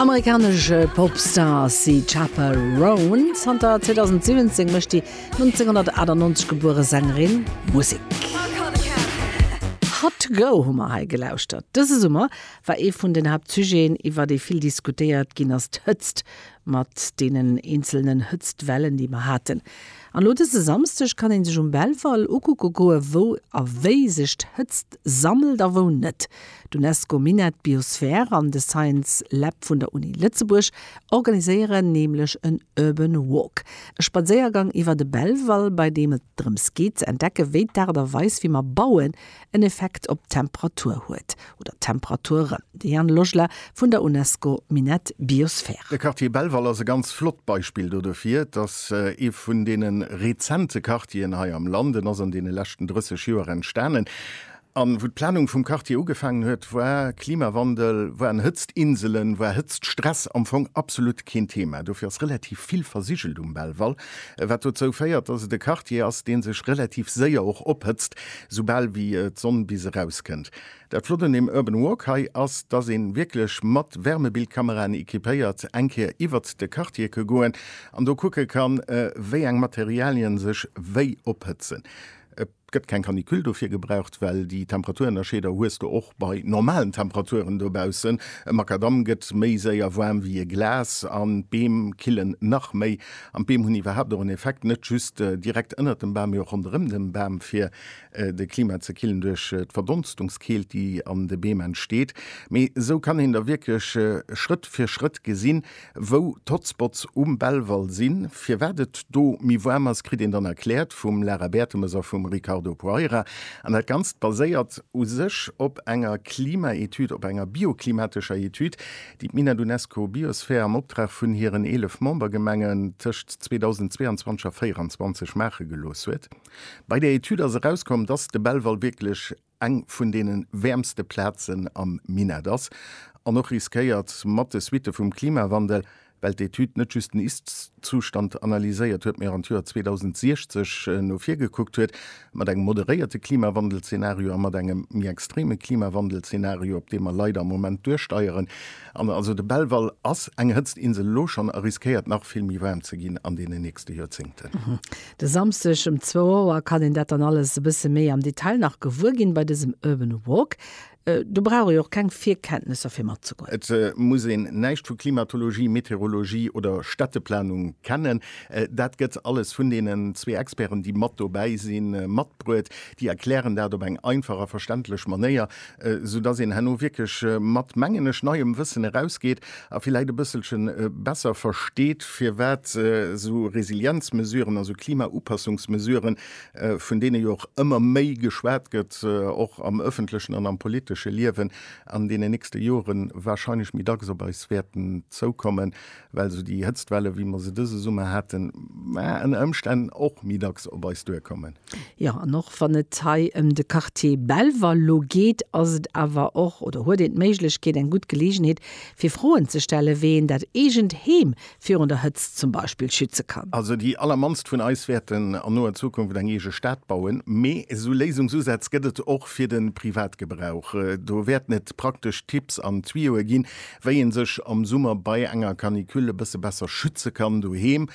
Amerikanesch Popstar ass si d'Chappell Roan. Zanter 2017 mécht déi 1998 gebuere Sängerin Musek. Hot Go hu mer hei gelauschtert. Dëse Summer war ee vun den Haaptsujeten, iwwer dee vill diskutéiert ginn ass, d'Hëtzt, mat deenen eenzelnen Hëtztwellen, déi mer haten. An elo dëse Samsdeg kann ee sech um Belval ukucke goe wou a wéi sech d'Hëtzt sammelt a wou net. D'Unesco Minett Biosphär an de Science Lab vun der Uni Lëtzebuerg organiséieren nämlech en Urban Walk, e Spadséiergang iwwer de Belval, bei deem et drëms geet ze entdecken, wéi d'Aart a Weis wéi mer bauen en Effekt op d'Temperatur huet, oder d'Temperaturen. De Yann Lojla vun der Unesco Minett Biosphär. De Quartier Belval ass e ganz flott Beispill do dofir. Et ass ee vun deene rezente Quartieren hei am Land. En ass an deene leschten 30 Joer entstanen An wou d'Planung vum Quartier ugefaangen huet, war Klimawandel, waren Hëtztinselen, war Hëtztstress am Fong absolut keen Thema. Dofir ass relativ vill versigelt um Belval, wat dozou féiert, dass et e Quartier ass, dee sech relativ séier och ophëtzt, soubal wéi d'Sonn bis erauskënnt. Dat Flott un deem Urban Walk hei ass, dass ee wierklech mat Wärmebildkameraen equipéiert eng Kéier iwwert de Quartier ke goen an do kucke kann, wéi eng Materialien sech wéi ophëtzen. Et gëtt keng Canicule dofir gebraucht, well déi Temperaturennerscheeder hues de och bei normalen Temperaturen dobaussen. E Makadamm gëtt méi séier waarm wéi e Glas an d'Beem killen nach méi. An d'Beem hunn iwwerhaapt och en Effekt, net just direkt ënnert dem Bam, mee och ronderëm dem Bam, fir de Klima ze killen duerch d'Verdonstungskeelt, déi an de Beem entsteet. Mee esou kann een da wierklech Schrëtt fir Schrëtt gesinn, Wou d'Hotspots um Belval sinn, firwat et do méi waarm ass, kritt een dann erkläert vum Lara Bertemes a vum Ricardo Poeira. An dat Ganzt baséiert u sech op enger Klimaetüd, op enger bioklimatescher Etüd, déi d'Mina d'Unesco Biosphere am Optrag vun hiren 11 Membergemengen tëscht 2022 a 2024 maache gelooss huet. Bei där Etüd ass erauskomm, dass de Belval wierklech eng vun deene wäermste Plazen am Minett ass an och riskéiert, mat de Suitte vum Klimawandel, well d'Etüd net just den Ist-Zustand analyséiert huet, mee och an d'Joer 2060 no vir gekuckt huet, mat engem moderéierte Klimawandel-Zenario a mat engem méi extreme Klimawandel-Zenario, op dee mer leider am Moment duersteieren. An also de Belval ass eng Hëtztinsel elo schonn a riskéiert nach vill méi waarm ze ginn an deenen nächste Joerzéngten. De Samsdeg um zwou Auer kann een dat dann alles e bësse méi am Detail nach gewuer ginn bei dësem Urban Walk. Do brauch ee och keng Virkenntnesser fir matzegoen. Et muss een näischt vu Klimatologie, Meteorologie oder Städteplanung kennen. Dat gëtt alles vun deenen zwee Experten, déi mat dobäi sinn, matbruet. Déi erklären dat op eng einfach a verständlech Manéier, esou dass een herno wierklech mat, mengen ech, neiem Wëssen erausgeet a villäit e bësselche besser versteet, firwat esou Resilienzmesuren, also Klimaupassungsmesuren, vun deene jo och ëmmer méi geschwat gëtt, och am öffentlechen an am politesche Liewen, an deenen nächste Joren wahrscheinlech méi dacks op eis wäerten zoukommen. well esou déi Hëtztwelle wéi mer se dëse Summer haten ënner Ëmstänn och méi dacks op eis duerkommen. Jo, an och wann et hei ëm de Quartier Belval elo geet, ass et awer och, oder huet een d'Méiglechkeet, eng gutt Geleegenheet fir Froen ze stellen, wéi een dat eegent Heem virun der Hëtzt zum Beispill schütze kann. Also déi allermannst vun eis wäerten an noer Zukunft eng eege Stad bauen, mee esou Léisungsusätz gëtt et och fir de Privatgebrauch. Do wäerten et praktesch Tipps an Tuyauxe ginn, wéi een sech am Summer bei enger Canicule e bësse besser schütze kann doheem,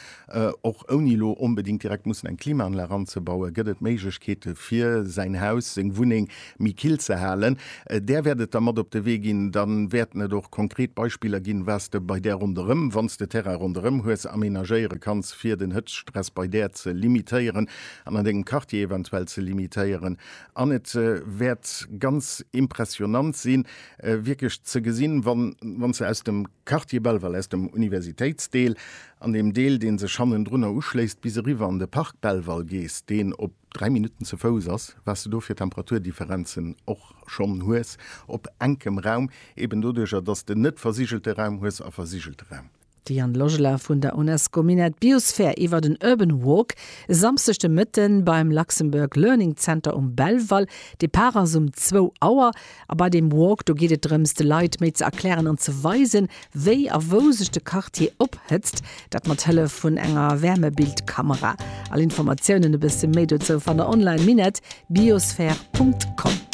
och ouni elo onbedingt direkt mussen eng Klimaanlag anzebauen, gëtt et Méiglechkeete fir säin Haus, seng Wunneng méi kill ze halen. Där wäert et da mat op de Wee ginn, da wäerten et och konkret Beispiller ginn, wat s de bei där ronderëm, wann s de Terrain ronderëm hues, amenagéiere kanns, fir den Hëtztstress bei där ze limitéieren an an dengem Quartier eventuell ze limitéieren. An et wäert ganz impressionnant sinn, wierklech ze gesinn, wann se aus dem Quartier Belval, aus dem Universitéitsdeel an deem Deel, dee sech hannendrunner uschléisst, bis eriwwer an de Park Belval gees, deen op dräi Minutten ze Fouss ass, wat s de do fir Temperaturdifferenzen och schonn hues op enkem Raum, eben doduercher, dass s de net versigelte Raum hues a versigelte Raum. D'Diane Logeler vun der UNESCO Minett Biosphere iwwert en Urban Walk e Samsdeg de Mëtte beim Luxembourg Learning Center um Belval. Depart ass um zwou Auer a bei deem Walk, do geet et drëms, de Leit méi ze erklären an ze weisen, wéi a wou sech de Quartier ophëtzt. Dat mat Hëllef vun enger Wärmebildkamera. All Informatiounen, e bësse méi dozou, fannt der online, minett-biosphere.com.